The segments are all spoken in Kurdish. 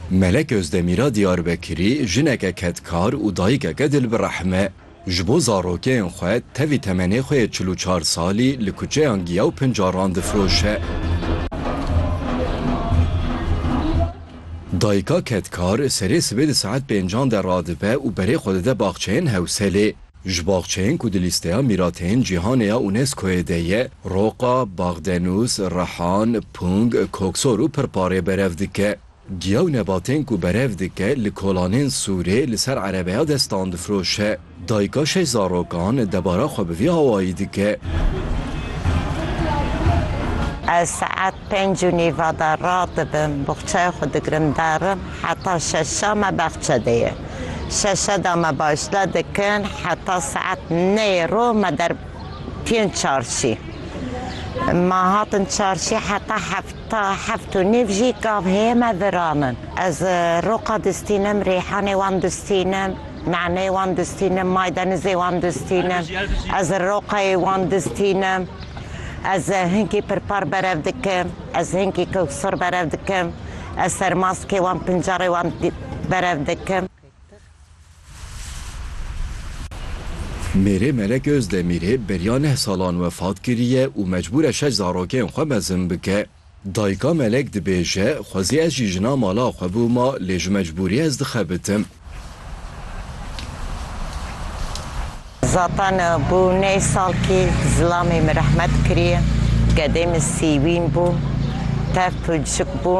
Melek Özdemîra Diyarbekirî jineke kedkar û dayikeke dil bi rehm e. Ji bo zarokeyên xwe tevî temenê xwe yê çil û çar salî li kuçeyan giya û pincaran difiroşe. Dayika kedkar serê sibê di saet pêncan de radibe û berê xwe dide baxçeyên Hewselê. Ji baxçeyên ku di lîsteya mîrateyên cîhanê ya UNESCO'yê de ye, Roqa, Bagdenûs, Rehan, Pung, Koksor û Pirparê berev dike. Giya û nebatên ku berev dike li kolanên Sûrê li ser erebeya destan difiroşe. Dayika şeş zarokan debara xwe bi vî awayî dike. Ez saet Pênc û nîva de radibim, boxçeya xwe digirim derim heta şeşa me baxçe de ye. Şeşe de me başle dikin heta saet neyê rû me derketîn çarşî. Me hatin çarşî heta hefta heft û nîv jî gav heye me viranin. Ez roqa distînim, rîhanê wan distînim, naneyê wan distînim, maydenizê wan distînim. Ez roqeyê wan distînim. Ez hinkî pirpar berev dikim, ez hinkî kewsar berev dikim, ez sermaskê wan pincarê wan berev dikim. Mêrê Melek Ozdemirê beriya neh salan wefat kiriye û mecbûr e şeş zarokên xwe mezin bike. Dayika Melek dibêje, Xwezî ez jî jina mala xwe bûma lê ji mecbûrî ez dixebitim. Zatan bû nê sal kî zilamê min rehmet kiriye. Gedê min sîwîn bû. Tev pircik bû.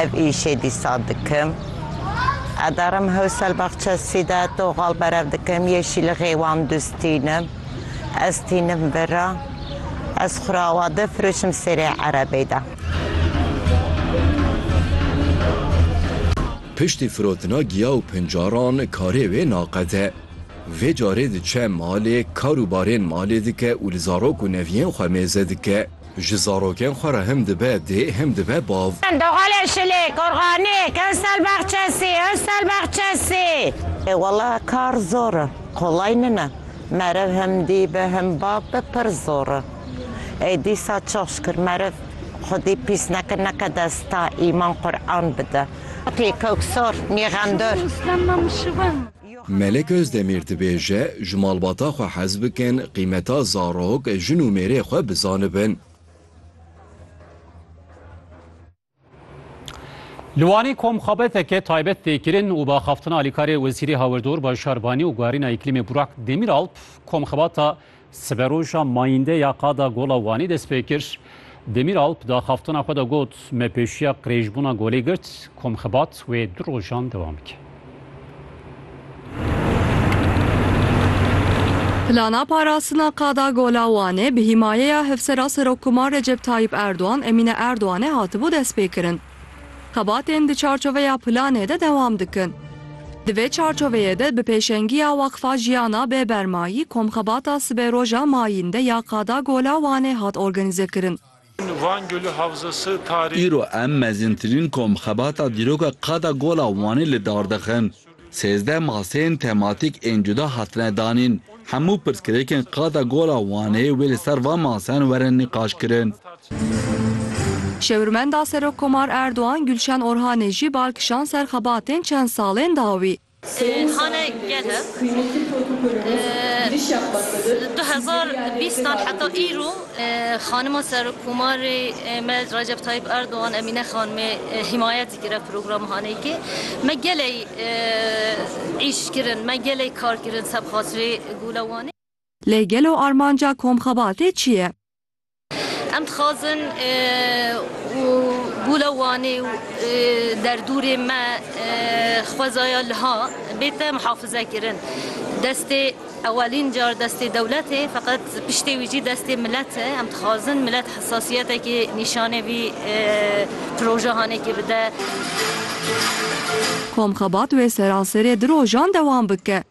Ev îşê dîsa dikim. Edarim Hewselbaxçesî de toxal berev dikim, yeşîlixê wan dustînim. Ez tînim vera. Ez xu ra awa difiroşim serê erebê de. Piştî firotina giya û pincaran karê wê naqede. Vê carê diçe malê, kar û barên malê dike û li zarok û neviyên xwe mêze dike. Ji zarokên xwe re hem dibe dê hem dibe bav. Doxalê Şilê, Korxanê, Kewsel Baxçesî, Ewsel Baxçesî. Ê wele kar zor e, qolay nine. Merev hem dî be hem bav be pir zor e. Ê dîsa çok şikir merev xwedî pîs neke neke desta îman Quran bide. Tê koksor, nîxendor. Melek Ozdemîr dibêje, ji malbata xwe hez bikin, qîmeta zarok, jin û mêrê xwe bizanibin. Li Wanê komxabeteke taybet tê kirin û bi axaftina alîkarê Wezîrê Hawirdor Bajar Wanê û Guherîna Îklîmê Burak Demîralp komxebata Siberoja mayîndê ya Qada Gola Wanî dest pê kir. Demîralp di axaftona xwe de got, Me pêşiya qirêjbûna golê girt, komxibat wê du rojan dewam bike. Plana parastina Qada Gola Wanê bi hîmayeya Hevsera Serokkoman Recep Tayyîp Erdogan, Emîne Erdoganê hatibû destpêkirin. Xebatên di çarçoveya planê de dewam dikin. Di vê çarçoveyê de bi pêşengiya Weqfa Jiyana Bê Bermayî komxebata sibêroja mayîn de ya Qada Gola Wanê hat organîzekirin. Van Gölü Havzası Tarihi. Îro em mezintirîn komxebata dîroka Qada Gola Wanê li dar dixin. Sêzdeh maseyên tematîk ên cuda hatine danîn. Hemû pirsgirêkên Qada Gola Wanê wê li ser van maseyan werin nîqaşkirin. Şêwirmenda Serokkomar Erdogan Gulşen Orhanê jî bal kişand ser xebatên çend salên dawî. Sayın Hane Gezer, kıymetli protokolümüz giriş yapmaktadır. Du hezar û bîstan heta îro Xanima Serokkomarê me Recep Tayyip Erdogan Emîne Xanimê himayet Girê program hanê ki me geley îş kirin, me geley kar kirin ser bi xatirê gula Wanê. Lê gelo armanca komxebatê çi ye? Em dixwazin û gula Wanê û derdûrê me xwezaya liha bête mihafizekirin. Destê. Ewelîn car destê dewlet e, feqet piştê wî jî destê milet e. Em dixwazin milet hesasiyetekê nîşanê vî projehanekê bide. Komxebat wê seranserê du rojan dewam bike.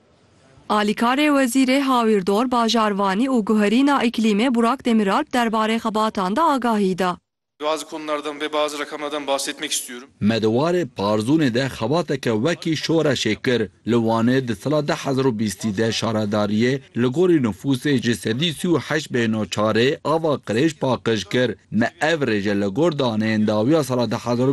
Alîkarê Wezîrê Hawîrdor, Bajarvanî û Guherîna Îklîmê Burak Demîralp derbarê xebatan de agahî da. Bazı konulardan ve bazı rakamlardan bahsetmek istiyorum. Me di warê Parzûnê de xebateke wekî şoreşê kir. Li Wanê di sala du hezar û bîst û deh şaredariyê li gorî nifûsê ji sedî sî û heşt bê no çarê ava qirêj paqij kir. Me ev rêje li gor daneyên dawiya sala du hezar û